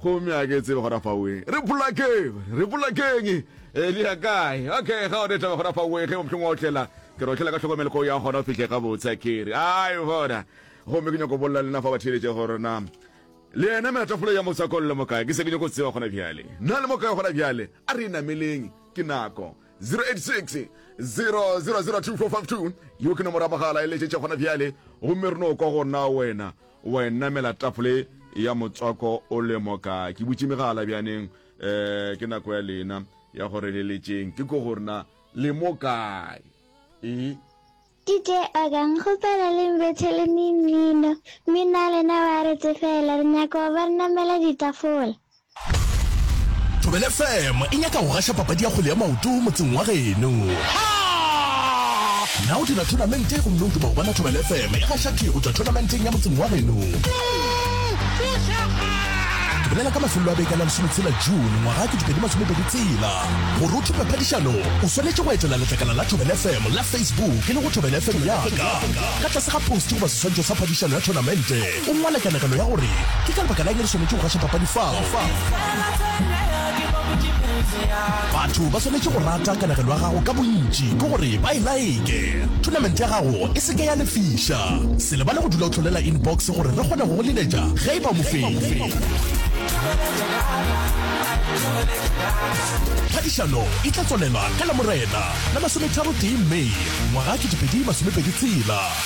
Gomme a ke tsebe gona fao wee. Re polakeng! Re polakeng! E le ya kae? Okay, ga one taba gona fao wee, ge mohlong wa otlela. Ke re otlela ka tlhokomelo ko ya gona o fihle gabotse, a ke re. Ai, bona. Gomme ke nyako bolela le na fa ba theeletše gore na le yena melatafole ya motswako le mokae. Ke se ke nyako tseba gona bjale. Na le mokae gona bjale? A re e nameleng. Ke nako. 086 000 2452 yo ke nomoro ya mogala e letšetše gona bjale, gomme re no kwa go na wena. O wa e namela tapole ya motswako o le moka. Ke butše megala bjaneng, eh, ke nako ya lena ya go re leletšeng. Ke ko gore na le mo kae? E. DJ Organ, kgopela le mbethele me mmino. Mmino wa lena wa re tsefela, re nyaka go ba re namela ditafola. Thobela FM e nyaka go gaša papadi ya kgwele ya maoto motseng wa geno. Na o dira thonamente gomme o duba go bona Thobela FM e gaša tee go tšwa thonamenteng ya motseng wa geno? Bolela ka mafelelo a beke la lesometshela June ngwaga ke dipedi masomepedi tsela. Gore o thupe phadišano, o swanetše go etela letlakala la Thobela FM la Facebook e le go Thobela FM yaka. Ka tlase ga post goba seswantšho sa phadišano ya thonamente, O ngwala kanegelo ya gore, Ke ka lebaka la'ng re swanetše go gaša papadi fao? Batho ba swanetše go rata kanegelo ya gago ka bontši ke gore ba e like. Thonamente ya gago e se ke ya lefiša. Se lebale go dula o hlolela inbox gore re kgone go go leletša ge e ba mofenyi. Phadišano e tla tswalela ka Lamorena la masometharotee May ngwaga 2026.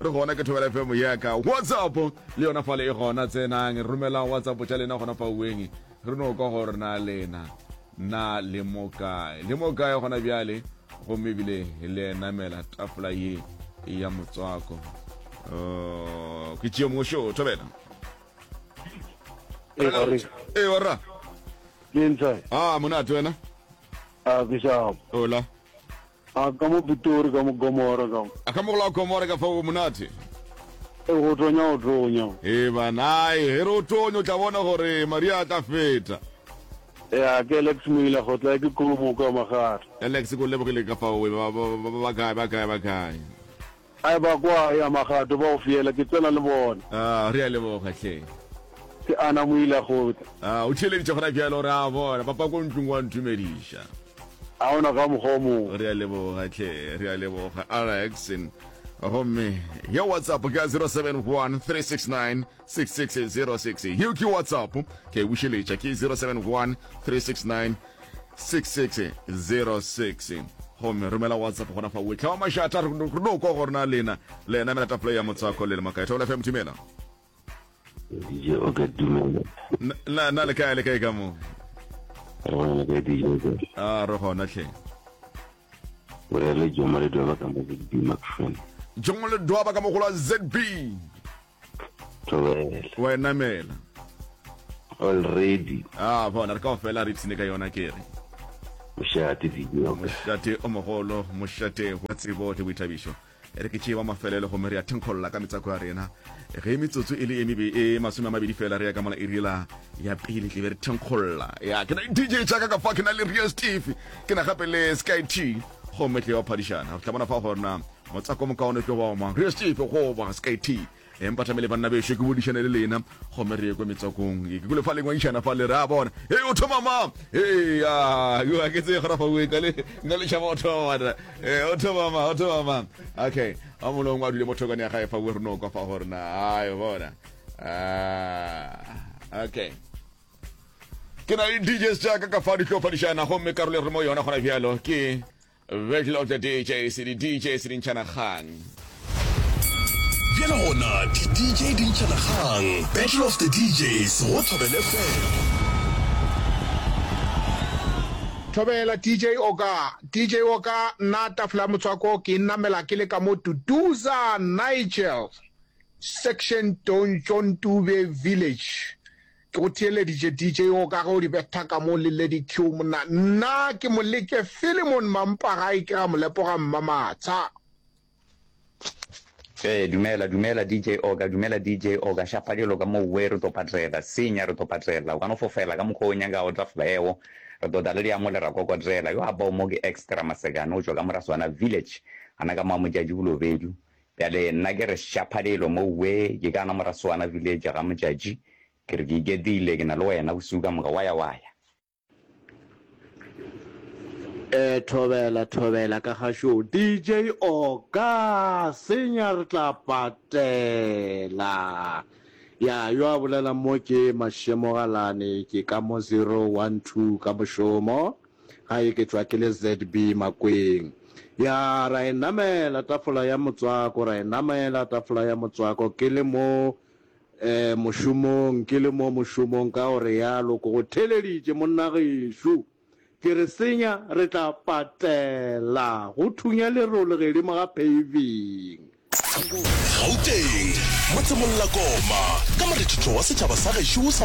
re gona ke thobela fm yaka whatsapp le yona fale e gona tsenang romelang whatsapp tša lena gona fa ueng re no kwa gore na lena na le mo kae le mo kae gona bjale gomme ebile le enamela tafola ye ya motswako oh, ke tšeo mongwe šoo thobela e orra a ah, monate wena ah, ola A ka mo Pitori, ka mo Gomora, ka mo. A ka mo go la Gomora ka fao go monate. E go tonya, o tonya. E bana, e ge re o tonya o tla bona gore Maria a tla feta. E a ke Alex Moila go tla e ke Kolomoka Magata. Alex ke o lebogile ka fao we, ba, ba, ba, ba, ba kae, ba kae, ba kae. Ai ba kwa ya magato ba go fiela ke tsena le bona. Aa, re a leboga hle. Ke ana mo ile a kgotla. Aa, o theeleditše gona bjalo re a bona papa ko ntlong wa ntumediša. A ona ka mokgwa o mong. Re a leboga hle, re a leboga Alex. Gomme ya WhatsApp ke ya 071 369 6606 yeo ke whatsapp ke a e bušeletša ke 071 369 6606 gomme romela whatsapp gona fa wetlha wa mašata re no kwa gorena lena le ena mela tapole ya motswako le le makaetha ola fm dumela dj o ka dumela na na le kae le kae ka mo re gona le kae dj o a re gona tlhe borele jomole dwaba ka mo zb macfan jomole dwaba ka mogolo zb Tloele. wa e namela Already. a bona re ka o fela re ipshine ka yona kere Mošate video. mošate o mogolo mošate wa tsebo le boithabišo e re ke tšee wa mafelelo gomme re ya thenkgolola ka metsako ya rena ge metsotso e le e mebe e masome a mabedi fela re ya ka mola irela ya pele tlebe re thenkgolola ya ke na le dj tsaka ka fa ke na le real steve ke na gape le sky t gomme tle wa phadišana o tla bona fa gorena Motsako o mokaone tlo ba wa mang? Re Steve goba SKT? Empa tlamele banna bešo ke bodišane le lena gomme re ye kwa metswakong. Ke kule fa lengwaišana fa le re a bona. Hei o thoma mang? Hei ya, yo a ke tse gora fa bue ka le nna le tšhaba o thoma bona. Eh o thoma mang? O thoma mang? Okay. A molong wa dule mothokane ya gae fa bue re no kwa fa gore na. Ai bona. Ah. Okay. Ke na le DJs jaaka ka fa di tlo fadišana gomme karolo re mo yona gona bjalo ke Virgil of the DJs, di DJs di ntšhana kgang. Bjale gona di DJ di ntšhana kgang, Battle of the DJs go Thobela FM. Thobela DJ Oka, DJ Oka, nna Tafole ya Motswako ke e namela ke le ka mo Duduza, Nigel, Section Dontjontube Village. Ke go theeleditše DJ yo ka ge o di betha ka mo le Lady Q monna. Nna ke mo leke Philemon Mampagai ke ra mo lepoga mmamatsha. Ee, dumela, dumela DJ Oka, dumela DJ Oka, šapa dilo ka mo we, re to patela, senya re to patela, o ka no fofela ka mokgwa o nyakago tla flaeo, re to tla le diamo le rakokodzela, yo a bao mo ke Extra Masekane, o tšwa ka mora Swana Village, gana ka mo a Motšatši Bolobedu, Bjale nna ke re šapha lelo mouwe, ke ka na Morasoana Village ga motšatši, ke re ke iketlile, ke na le wena bosiu ka moka, wa ya, wa ya. Ee, thobela, thobela ka gašoo, DJ, o ka senya, re tla patela. Ya, yo a bolelang mo ke Mashemogalane, ke ka mo zero, one, two, ka mošomo. ga e ke tšwa ke le ZB Makweng. Ya ra e namela tafola ya motswako, ra e namela tafola ya motswako ke le mo eh, mošomong, ke le mo mošomong ka gore yalo ko go theleditše monnagešo. Ke re senya re tla patela go thunya lerole gedimo ga paving. Gauteng, motsemong Lakoma, ka morethetho wa setšhaba sa gešo sa